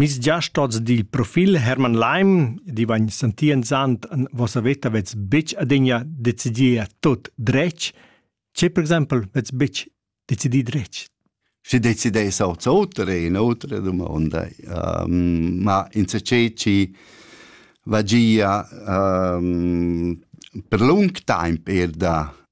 Miss giast oz dil profil Hermann Leim, di vegn sentienzant en vossa veta vets betg adegna decidiu a tut dretg. Tge per exempel vets betg decidì dretg? Schi decidess oz oter è in'otra domanda. Um, ma in saceci vagia um, per lung temp er da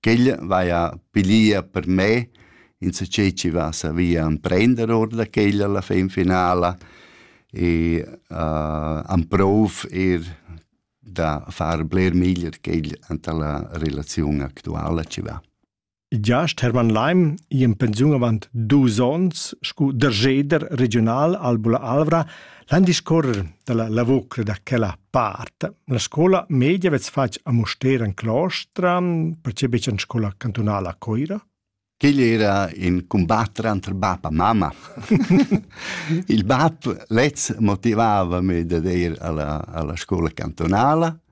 ch'el vaja pilia per me insatgei chi va savia emprender our da quella la fin finala e uh, amprov eir da far bler meglier quel anta la relaziun actuala chi va. Giast Hermann Leim i in pensiun avant dus ons scu dergeder regional al Bula Alvra L'an discorrer dalla lavur da quella part. La scola media vez fatg a Muster en Claustra, percebi en scola cantonala a Coira. Quel era in combattre entre bab e mamma. Il bab lez motivava me da ir alla, alla scuola cantonala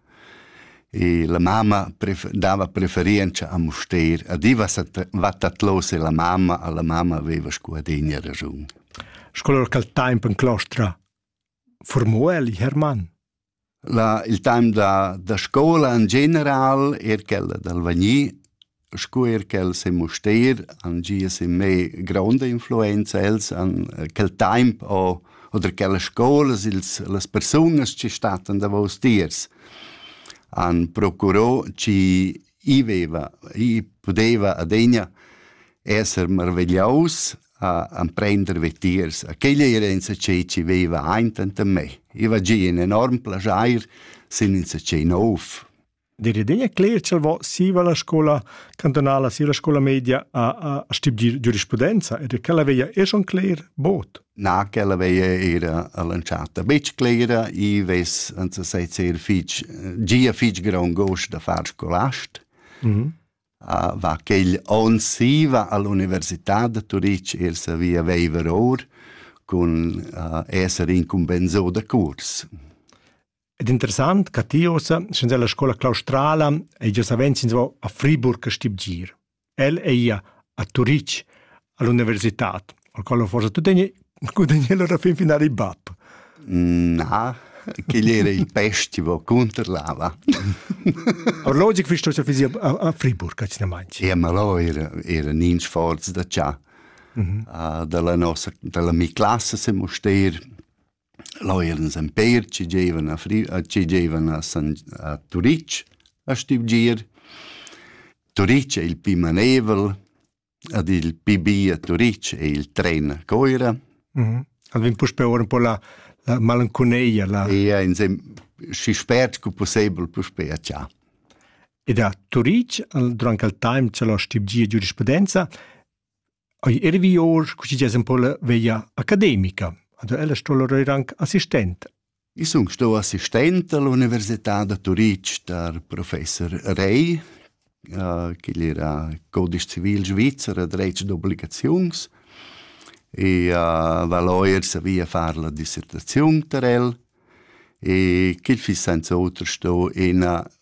E la mamma pref- dava preferientscha a Mustér. Adiva sa t- va tatlos e la mamma, a la mamma veva scu adegna raschun. Sco lur quel temp en clostra formò el Hermann. La, il time da, da scola in general, er quella dal Vagni, Scu eir ch'els han Mustér han gia sin me gronda influenza. Els han quel taimp o oder quellas scoulas, ils las persunas chi stattan davous tiers han procurò chi i veva, i pudeva adegna esser marvegliaus a amprender vetiers. A quella era insatgè chi veva aint anta me. I va gia in enorm plaschair sin insatgè nouv. Der idea cler ch'el vo siva la scola cantonala sia la scola media a, a, a stibgir giurisprudenza ed ch'ella veia esch on cler bot. Na, ch'ella veia era all'entschatta betg clera, i ves en sa seit ser fitg, gia fitg grond gos da far scolast. Mm -hmm. uh, va quel on siva all'università de Turic er savia veiver or cun uh, esser incumbensò de curs. Ed interessant ca ti ossa, sens ella scola claustrala, ei gia savens ins va a Friburg a stibgir. El ei ia a Turitg, all'universitad, al qual forse tu tegni gudagnel alla fin finale il bab. Na, che era il festival contro lava. Orlogic fi sto fisi a Friburg, ca ci ne manci. E ma lo era era nins forz da cha. Mm -hmm. uh, dalla nossa dalla mi classe se moster Leu eran els empér chi gievan a Fri- a chi gievan a San- a Turitg a stüvgir. Turitg ei il pi manevel ed il pi bi a Turitg ei il tren a Coira. Ed vegn puspei ora un po la, la malanconia, la... E insem schi spert scu pussebel puspei a Tschà. Ed a Turitg, durante il time c'è la stüvgia giurisprudenza, Ei ervi or così des un po la veglia academica. Ad ella sto lor anche assistent. Ich sun sto assistente all'Università da Turitg der Professor Rey, äh, che era codice civile svizzera dretg d'obbligazions e uh, va lawyer savia far la dissertazione per el e che fi senza altro sto ina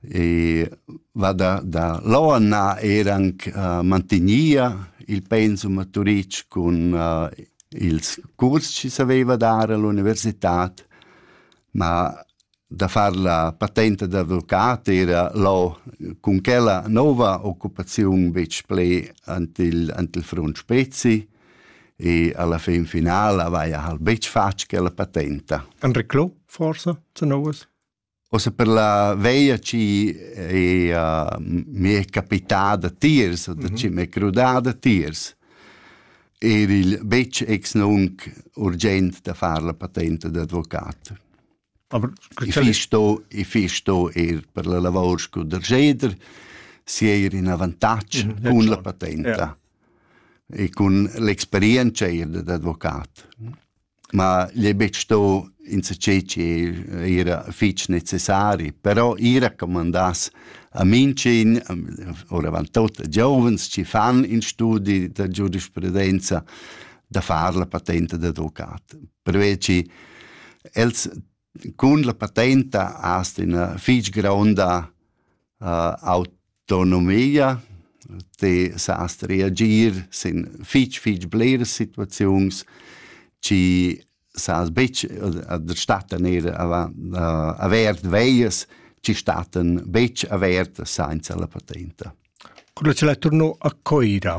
e va da da l'onna eir anc uh, mantegnia il pensum a Turitg cun uh, ils curs chi s'aveiva dar all'università ma da far la patente d'advocat era lo cun quella nova occupaziun betg pli ant il, ant il front spezi e alla fin finala avaia hal betg fatg quella patenta. Enric Clo, forse, zu novas? Ossa per la veia chi ea mi è capitada tiers, da chi m'è crudada tiers, er il betg ex nunc urgent da far la patenta d'advocat. Aber I fiss sto, i fiss sto er per la lavor scu dergeder sieir in avantatg Mhm, ja, cun la klar. patenta e cun l'experientscha eir dad advocat. ma gli è betg sto insatgei che era fitg necessari, però ir a comandas a Minchin, oravant tot a giovens che fan in studi da giurisprudenza, da far la patenta d'advocat. Pervei che els Cun la patenta hast üna fich gronda autonomia, ti sast reagir sin fich fich bleras situaziuns, chi sast betg da stattan eir avant avert veias, chi stattan betg avertas sainza la patenta. Cura ch'el ei turno a Coira,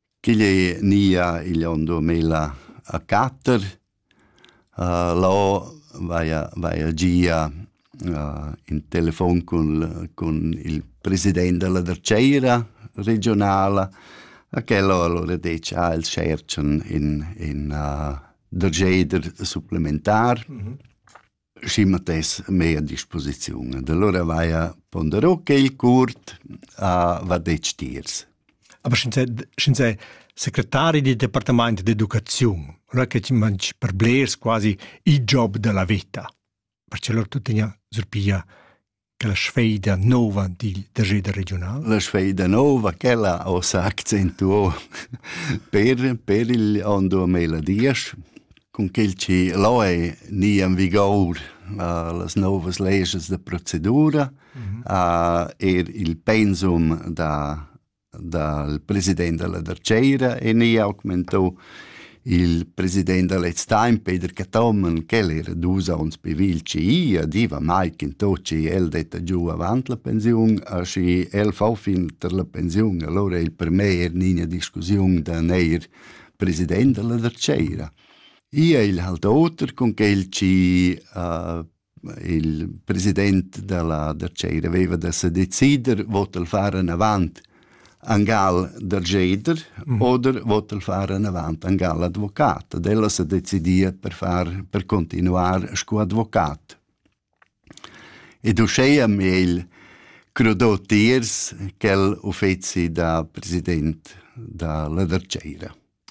Ch'igl ei nia igl onn duamilla e quatter. Lò vaia vaia gia in telefon cun cun il president dalla dertgeira regiunala e quel ho alura detg ah els tscherchan in in dergeider supplementar. schi matess mei a disposiziun. ed allura vaia ponderò quei curt a va detg tiers. Aber schi sei secretari del departament d'educaziun, allora che ti mangi per blers quasi il job della vita. Perché loro tutto tigna surpiglia la sfeida nova dil dageda regional? La sfeida nova, quella ho sa accentuo per, per il on 2010, cun quel che lo è ni in vigor uh, las novas leges de procedura, uh, er il pensum da dal president dalla dartgeira e ni augmentau il president da lez time Peter Cathomen ch'el era dus onns pivil ci a diva mai che to ci el detta giu avant la pensiun a schi el fa fin ter la pensiun allora il per me er nina discussiun da neir president dalla dartgeira Ia il halt oter con quel ci uh, il president dalla da tscheira veva da se decider vot el far anavant angal da geider mm. oder vot el far anavant angal advocat ad ella se decidia per far per continuar sco advocat ed uscheia meil crudò tiers quel uffeci da president da la da tscheira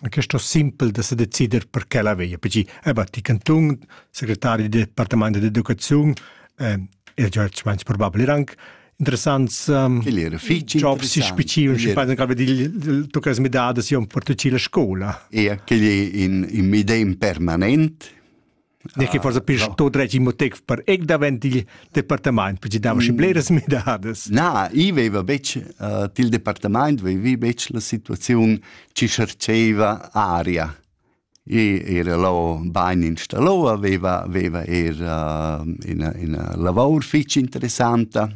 Questo simpel da decider per che la veglia, perché eh, va ti cantun, segretario del departamento di educazione, eh, e George Mensch probabile era anche interessants um, Ele era fitch jobs si specifici și poate că vedi tu că mi da da si un portocino la scuola. E che in, in medem permanent Ne che forsa pis to dretg imotec per ec davent il departament, perché dava schi bleras midadas. Na, i veva betg uh, til departament, vevi betg la situaziun ci cherceva aria. I era lo bain installo, veva, veva era uh, ina, ina lavor fitch interessanta,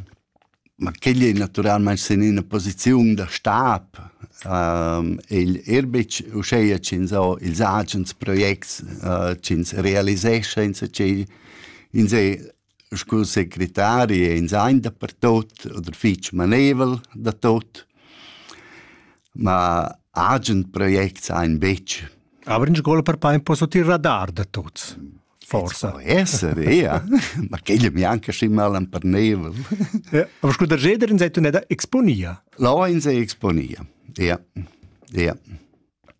Ma quegl ei naturalmein sin ina posiziun da stab. igl ir betg uscheia ch'ins ho ils agens projects ch'ins realisescha insatgei. Ins ei scu secretari e ins ein dapertut oder fitg manevel da tot. Ma agen projects ein betg. Aber in scola per part posso tier radar da tuts. Forsa. Po esser, ja. Ma quella mi anche schi mal emperneva. Ja, aber scuder jeder in sei tu neda exponia. La in sei exponia. Ja. Ja.